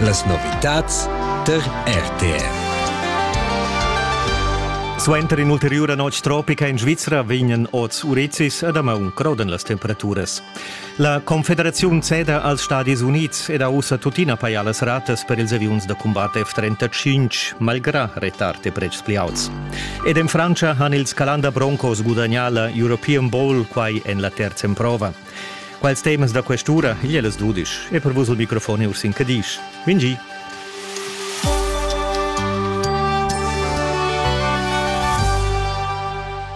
Las novitads tar RTR. Suenter in'ulteriura notg tropica in Svizra vegnan oz urizis a damaun crodan las temperaturas. La Confederaziun ceda als Stadis Unids ed ha ussa tuttina pajà las ratas per ils aviuns da cumbat F-35, malgrà retard e pretschs pli auts. Ed en Frantscha han ils Calanda Broncos gudagnà la European Bowl quai en la terza emprova. Quels temas da quest'ura, igl è las dudisch, e per vus il microfon è Ursin Cadisch. Vingi!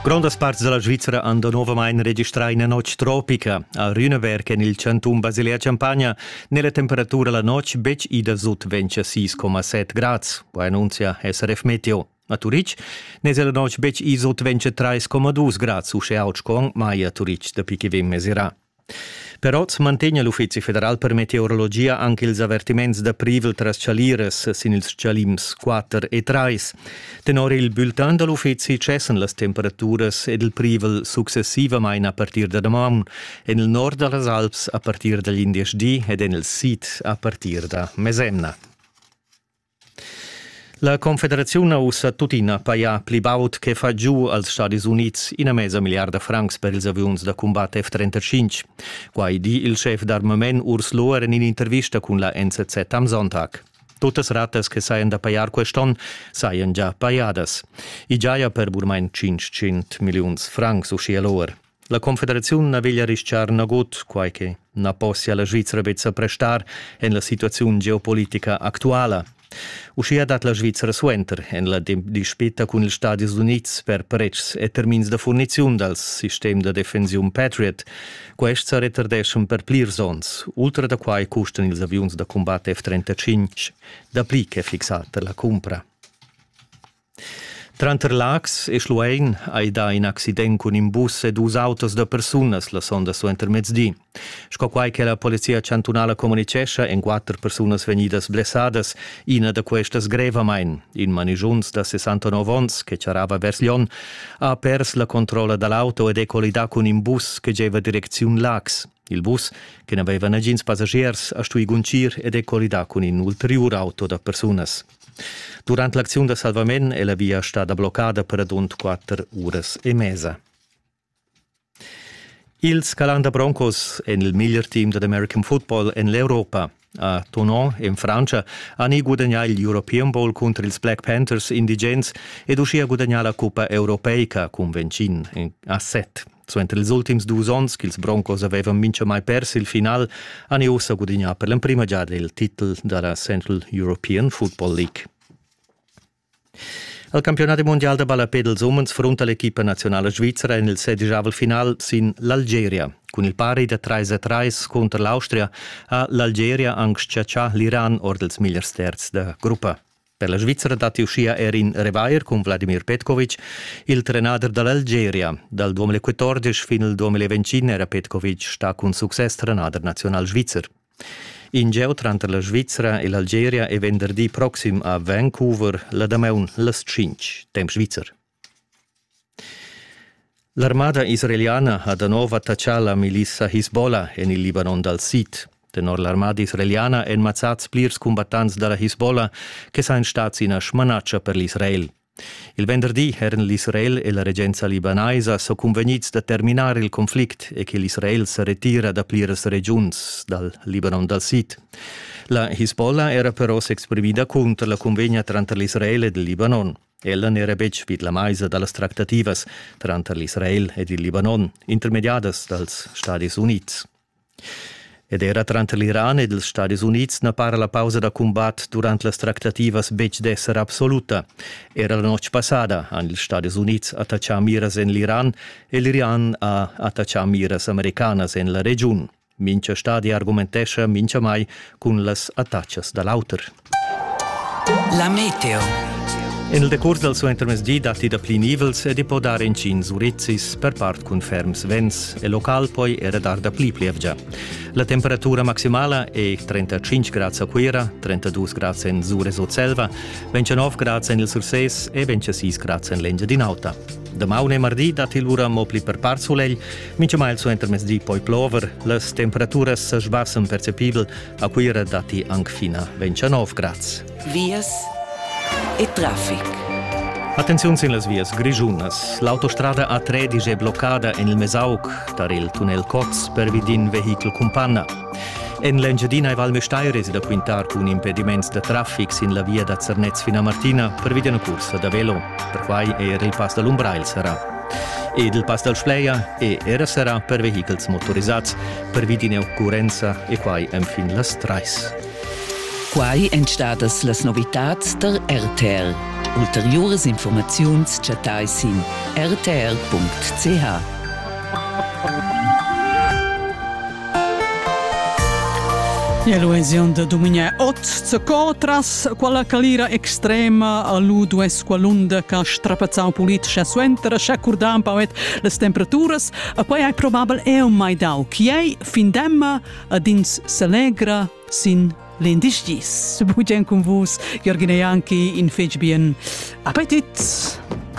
Grondas parts della Svizzera hanno nuovamente registrato una notte tropica. A Rüneberg, in il chanton Basilea-Champagna, nella temperatura la notte bec ida sut 26,7 gradi, poi annuncia SRF Meteo. A Turitg n'esa la notg betg iso dventscha trais coma dus grads uschè aut sco mai a Turitg dapi che vegn mesirà. Per oz mantegna l'Uffizi federal per meteorologia anche ils avertiments da privel tras chaliras sin ils chalims 4 e 3. Tenor il bulletin da l'uffizi cessan las temperaturas ed il privel successivamain a partir da damaun en il nord da las Alps a partir dagl indesch di ed en il sid a partir da mesemna. La confederaziun ha ussa tuttina pajà pli baud che fa giu als Stadis Unids ina mesa milliarda francs per ils aviuns da cumbat F-35. Quai di il schef d'armament Urs Lohr en in'intervista cun la NZZ am Sonntag. Tuttas ratas che sajan da pajar quest'onn sajan già pajadas. I giaja per burmain 500 milliuns francs, uschia Lohr. La Confederaziun na veglia rischar nagut, quai che na possia la Svizra betg prestar en la situaziun geopolitica actuala. Uschia dat la Svizra suenter en la dispita cun ils Stadis Unids per pretschs e termins da furniziun dal sistem da defensiun Patriot. Quests sa retardeschan per plirs onns. Ultra da quai custan ils aviuns da cumbat F-35 dapli che fixata la cumpra. Tranter Laax e Schluein hai dà in accident cun in bus e dus autos da persunas la sonda suentermezdi. Sco quai che la Polizia chantunala communitgescha, èn quatter persunas vegnidas blessadas, ina da questas grevamain. In manigiuns da 69 onns che charrava vers Lyon ha pers la controlla da l'auto ed è collidà cun in bus che gieva direcziun Laax. Il bus, che n'aveva nagins passagiers, ha stuì guncir ed è collidà cun in ulteriur auto da persunas. Durant l'acziun da salvament è la via stada bloccada per adund quatter uras e mesa. Il Scalanda Broncos en il miglior team dad American football en l'Europa. A Tonon, in Francia, ha ni gudagnà il European Bowl cunter ils Black Panthers indigens ed uschia gudagnà la cuppa europeica cun Vencin a set. Suenter ils ultims dus onns ch'ils Broncos avevan mintgamai pers il final, han i ussa gudignà per l'emprima giada il titel da la Central European Football League. Al campionat mondial da ballapè dels umens frunta l'equipa nazionala svizra en il sedijavel final sin l'Algeria. Cun il pari da 3 a 3 cunter l'Austria ha l'Algeria anc chatschà l'Iran or dels migliers terzs da gruppa. Per la Svizzera datti uschia er in revair cun Vladimir Petkovic. Il trenader da l'Algeria dal 2014 fin al 2025 era Petkovic stà cun success trenader nazional svizzer. In geu tranter la Svizzera e l'Algeria è venderdi proxim a Vancouver la damaun las 5, temp svizzer. L'armada israeliana ha da nov attaccà la milissa Hisbollah en il Libanon dal sid. Tenor l'armada israeliana èn mazzads plirs cumbattants da la Hisbollah che sajan stads ina smanatscha per l'Israel. Il venderdi eran l'Israel e la regenza libanaisa so cunvegnids da terminar il conflict e che l'Israel sa retira da pliras regiuns dal Libanon dal sid. La Hisbollah era però s'exprimida cunter la cunvegna tranter l'Israel ed il Libanon. Ella n'era betg vid la maisa da las tractativas tranter l'Israel ed il Libanon, intermediadas dals Stadis Unids. Ed era tranter l'Iran ed ils Stadis Unids na para la pausa da cumbat durant las tractativas betg d'esser absoluta. Era la notg passada han ils Stadis Unids attachà miras en l'Iran e l'Iran ha attachà miras americanas en la regiun. Mincha stadi argumentescha minchamai cun las attachas da l'auter. La meteo. En il decurs dal suentermezdi datti dapli nivels ed i po dar intgins urizzis, per part cun ferms vents e local poi era dar dapli plievgia. La temperatura maximala è 35 grads a Cuira, 32 grads en Sur e Sutselva, 29 grads en il Sursés e 26 grads en l'Engiadin'Alta. Damaun e mardi dat il ura mo pli per par sulegl, mintgamai il suentermezdi di poi plover. Las temperaturas sa sbassen percepibel, a Cuira datti anc fina 29 grads. Vias e traffic. Attenziun sin las vias grischunas. L'autostrada A3 è bloccada en il Mesauc tar il tunnel Cots pervi d'in vehichel cumpanna. En l'Engiadina e Val Müstair esi da quintar cun impediments da traffic sin la via da Zernez fin a Martina pervia d'una cursa da velo. Perquai è era il pass da l'Umbrail serrà. Ed il pass dal Spleia è era serrà per vehichels motorisads pervi d'ina occurrenza e quai enfin las trais. Quai èn stadas las novitads der RTL. Ulteriuras informaziuns chattai sin rtl.ch. E l'oasiun da duminia ot zaco tras quella calira extrema a lu duess qualunda che strapazzau politica suenter sche curdan pauet las temperaturas e poi hai probabel eu mai dau chiei fin demma ad ins s'allegra sin l'indisgis. Bugen cun vus, Jürgen e Janki in fetg bien Appetit!